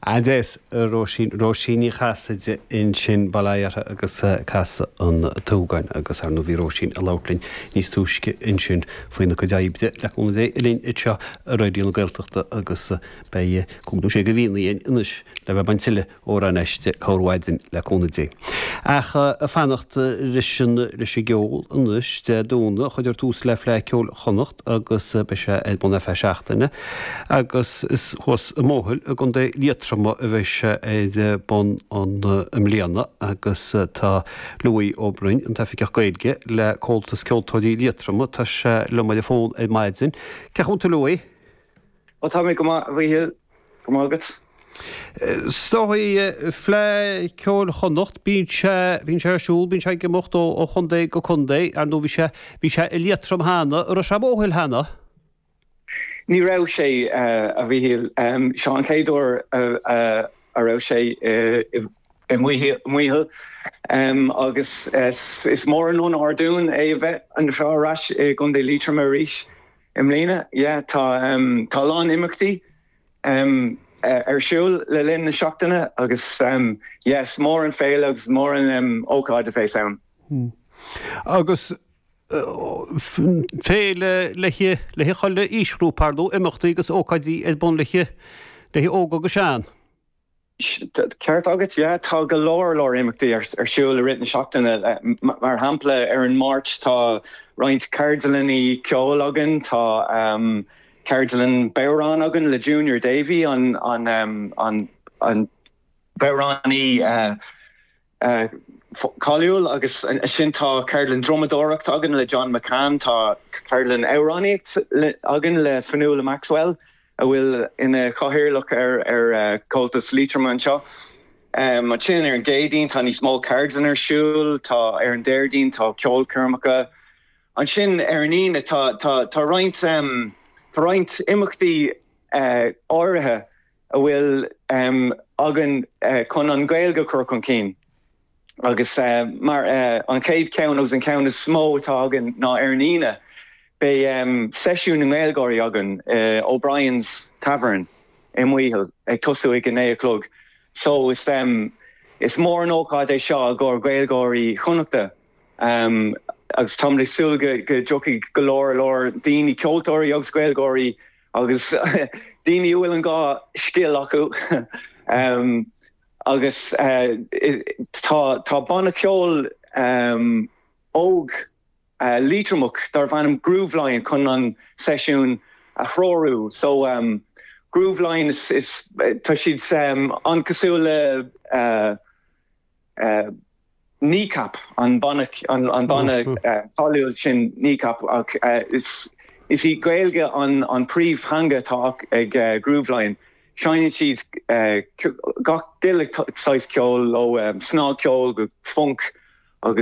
Agus Róisín, Róisín Ní Chasaide ansin, bail ó Dhia uirthi agus Casadh an tSúgáin agus, ar ndóigh, bhí Róisín ag labhairt linn níos túisce ansin faoina cuid oibre le cúnamh Dé linn anseo i Raidió na Gaeltachta agus beidh cúig nó sé de mhíonna anois le bheith ag baint tuilleadh amhráin aisti, chuile mhaidin le cúnamh Dé. Ach ag fanacht leis an leis an gceol anois. Dé Domhnaigh, cuirfear tús le Fleadh Ceoil Chonnacht agus beidh sé ar bun ar feadh seachtaine agus is thuas i Maothail i gContae Liatroma a bheidh sé ar bun i mbliana agus tá Louis Ó Broin, an tOifigeach Gaeilge le Comhaltas Ceoltóirí Liatroma, tá sé liom ar an bhfón ar maidin. Cén chaoi a bhfuil tú Louis? Ó tá mé go maith a Mhichíl. Go raibh maith agat. So Fleadh Ceoil Chonnacht, bíonn sé bíonn sé ar siúl, bíonn sé ag imeacht ó ó chontae go contae, ar ndóigh bhí sé bhí sé i Liatroim cheana, an raibh sé i Maothail cheana? Ní raibh sé a Mhichíl, seo an chéad uair a a raibh sé i Maothail agus is mór an onóir dúinn é a bheith anseo ar ais i gcontae Liatroim arís. i mbliana. Yeah tá tá a lán imeachtaí ar siúl le linn na seachtaine agus yeah is mór an féile agus is mór an ócáid a bheas ann. Agus féile le haghaidh le haghaidh chuile aoisghrúpa, ar ndóigh, imeachtaí agus ócáidí ar bun le haghaidh le haghaidh óg agus sean. Ceart agat, yeah. Tá go leor leor imeachtaí ar siúl i rith na seachtaine. Mar shampla ar an Máirt tá roinnt ceardlannaí ceoil againn. Tá ceardlann bodhrán againn le Junior Davey an bodhránaí. cáiliúil agus ansin tá ceardlann drumadóireacht againn le John McCann, tá ceardlann amhránaíocht againn le Fionnuala Maxwell a bhfuil ina chathaoirleach ar Chomhaltas Liatroma anseo. Ansin ar an gCéadaoin tá níos mó ceardlann ar siúl, tá ar an Déardaoin tá ceolchoirmeacha. Ansin ar an Aoine tá roinnt imeachtaí áirithe a bhfuil againn chun an Ghaeilge a chur chun cinn. Agus mar an chéad cheann agus an ceann is mó atá againn ná ar an Aoine, beidh seisiún na nGaeilgeoirí againn in O'Brien's Tavern i Maothail ag tosú ag a naoi a chlog. So is mór an ócáid é seo i gcomhair Ghaeilgeoirí Chonnacht agus táimid ag súil go dtiocfaidh go leor leor daoine, ceoltóirí agus Gaeilgeoirí Agus daoine a bhfuil an dhá scil acu. Agus tá banna ceoil óg Liatromach darbh ainm Grooveline chun an seisiún a threorú. So Grooveline tá siad an-cosúil le. Kneecap, an banna cáiliúil sin Kneecap ach is í Gaeilge an príomhtheanga atá ag Grooveline. Seinneann siad gach uile saghas ceoil ó shnagcheol go funk agus.